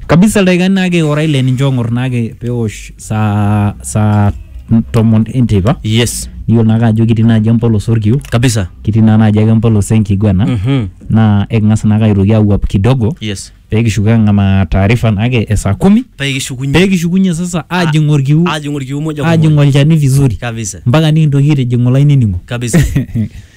Kabisa ildaikani naake ora ile ninche oong'or naake peosh saa saa tomon enteipa yes niyiolo naake ajo kitii naaji empolos orkiu kabisa kitii naa naaji ake empolos enkiguana Mhm. naa eking'as naake aitoki awuap kidogo yes pekishuko ang'amaa taarifa naake e saa kumi paa kishukunye pekishukunye sasa ajing orkiu ajing orkiu moja kwa ajing moja olchani vizuri kabisa mpaka nikintoki aitijing'u olainining'o kabisa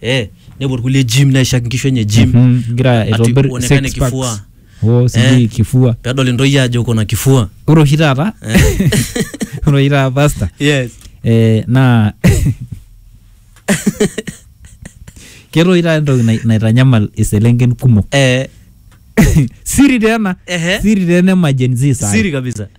eh, nepuo irkulie gym naishak inkishu enye gym Mhm, igira ati aitobir kuonekane six packs. kifua Oh, sijui Eh. kifua pedol intoyie ajo kuna kifua ore oshi taata Eh. ore oshi taata pasta yes eh, naa keeta oshi taata entoki nai- naitanyamal iselenken kumok eh, siri teena ehe siri teena emajenzi siri kabisa